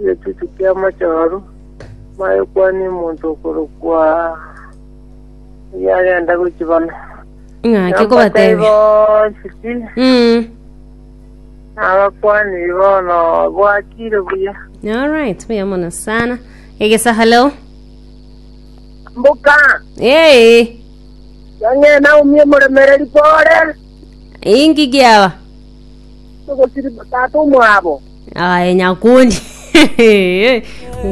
Egechuchu ki'amachooru, maya okwane omonto okorokwa oyio agenda gochibana. Ng'ake kobatebia. bonsi ki, Mm. nabakwani bono bwakire buya. All right, buya mono sana. Egesa hello. Mbuka, Eh, yang'ena umie moremereri pore. ingi giaba. Ogosiriboka ase omwabo. Aye nyakundi. Wa.